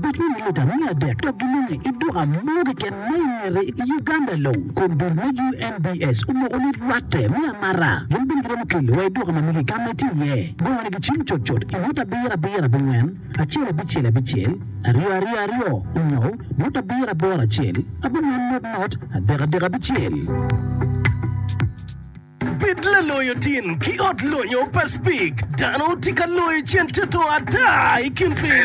Bidul me lita miya adek dok ginonge i duka mo keken ma i ngete i Uganda long. Kom dul me UNBS omoko ni lwatte me amata gin bene giromo kelo wa i duka ma mege ka ma itye iye. Gongo ni gicim cut cut i ngut abiro abiro abingwen acel abicel abicel aryo aryo aryo onyo ngut abiro aboro acel abingwen ngut ngut adek adek abicel. Bed laloyo tin ki ot lonyo pa Speke. Dano tye ka loyo cente to ata i kin piny.